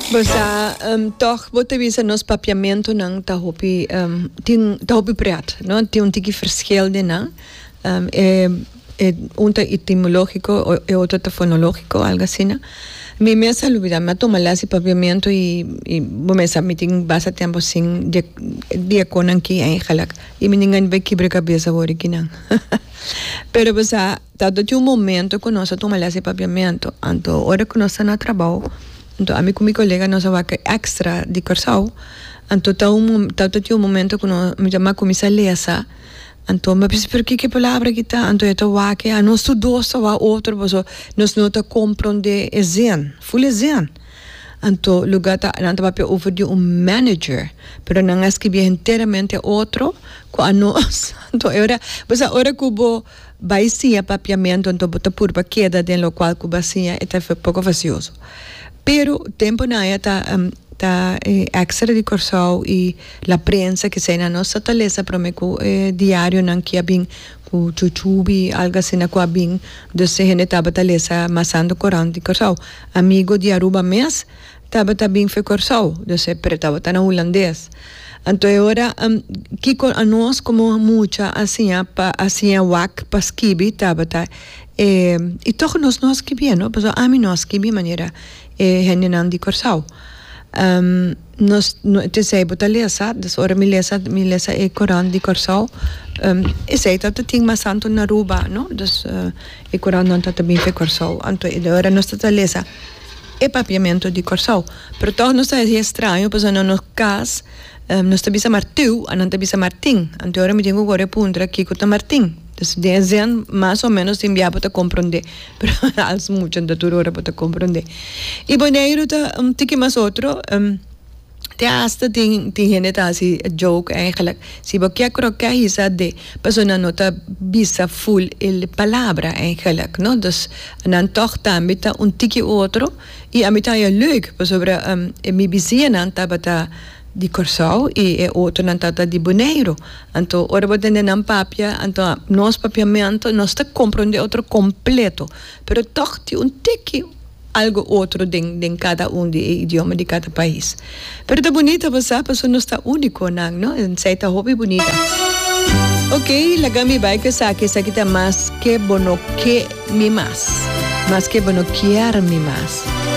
Basa tog bo ta bisa nos papiamentonan ta hopi tin ta hopi pret no tin un tiki fershel den nan e e un ta etimologiko e otro ta fonologiko algo asina mi mes a lubida mi a toma les di papiamento y y bo mes sa mi tin basta tempo sin di di e konan ki eigenlijk y mi tin kibra kabes awor di kinan pero bo sa. Ta tin un momento cu nos a tuma les di Papiamento, anto ora cu nos ta na trabao, anto ami cu mi colega nos a wak extra di Curaçao, anto ta un mo ta tin un momento cu no mi ta cuminsa lesa, anto mi a bisa pero kiko e palabra aki ta, anto e ta wak a nos tur dos ta wak otro paso nos no ta compronde e zin, full e zin, anto lugar ta nan ta papia over di un manager, pero nan a escribi enteramente otro cu a nos, anto e ora, bo sa ora cu bo. Bai siña papiamento anto bo ta purba keda den lokual ku ba siña e ta poko vasioso. Pero temponan aya ta ta e ekstra di Kòrsou i la prensa kisei nan nos sa ta lesa prome ku e diarionan ki a bin ku chuchubi algu asina ku a bin dus e hende tabata lesa mas anto korant di Kòrsou. Amigo di Aruba mes. Tabata bin fe Kòrsou, dus e pre tabata na hulandes. Anto e ora kiko anos komo mucha a siña pa a siña wak pa skibi tabata e i tog nos no a skibié no pasobra ami no a skibi manera e hendenan di Kòrsou nos tensei bo ta lesa dus ora mi lesa mi lesa e korant di Kòrsou esei tabata tin mas santo na Aruba no dus e korantnan tabata bin fe Kòrsou anto e ora nos tabata lesa e Papiamento di Kòrsou. Pero tòg nos ta hasi estraño pasobra na nos kas nos ta bisa Martiu, a nan ta bisa Martin. Anto ora mi tin ku kore a puntra kiko ta Martin. Entonces den esèn mas o menos tin bia bo ta komprondé, pero als mucha no ta tur ora bo ta komprondé. I Boneiru ta un tiki mas otro. te hasta tin tin hende ta hasi joke eigenlijk si bo ke kro ke hisa de persona no ta bisa full el palabra eigenlijk no dus nan tog tambe ta un tiki otro y a mi ta haña leuk pasobra mi bisiñanan tabata di Kòrsou y e otronan tabata di Boneiru anto ora bo tende nan papia anto nos papiamentu nos ta kompronde otro kompleto pero tog tin un tiki algo otro den den cada un di e idioma di cada pais. Pero ta bunita basa paso nos ta unico nan no ensay ta hopi bunita. Ok laga mi bay cu esaki esaki ta mas ke bo no ke mi mas mas ke bo no kier mi mas.